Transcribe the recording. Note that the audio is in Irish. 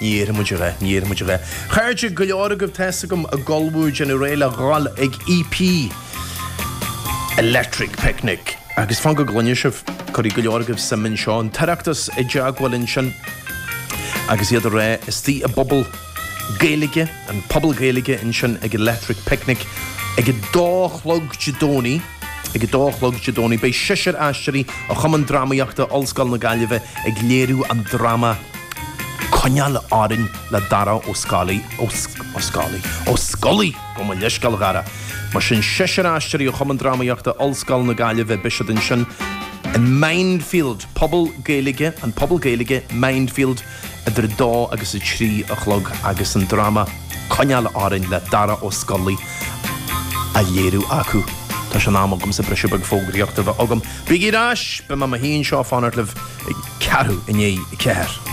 Ní iarrfaidh muid a bheith, ní iarrfaidh muid a bheith. Chairde go leor agaibh tá's agam ag ullmhú déanamh réidh le ghabháil ag EP Electric Picnic. Agus fan go gcluinfidh sibh, cuirfidh go leor agaibh suim anseo, an tOireachtas i dteagmháil ansin agus iad ag rá istigh i bPuball Gaeilge, an Puball Gaeilge ansin ag Electric Picnic ag a dó a chlog Dé Domhnaigh. Ag a dó a chlog Dé Domhnaigh beidh seisear aisteoirí ó Chumann Drámaíochta Ollscoil na Gaillimhe ag léiriú an dráma Coinneáil Orainn le Darach Ó Scolaí, Ó Scálaí? Ó Scolaí! Gabh mo leithscéal, a Dharach. Mar sin, seisear aisteoirí ó Chumann Drámaíochta Ollscoil na Gaillimhe, beidh siad ansin in Mindfield, puball Gaeilge, an Puball Gaeilge, Mindfield, idir 2 agus 3 a chlog agus an dráma 'Coinneáil Orainn' le Darach Ó Scolaí á léiriú acu. Tá sé in am agamsa briseadh beag fógraíochta a bheith agam. Bígí ar ais! Beidh mé i mo shuí anseo ag fanacht libh ag ceathrú i ndiaidh a ceathair.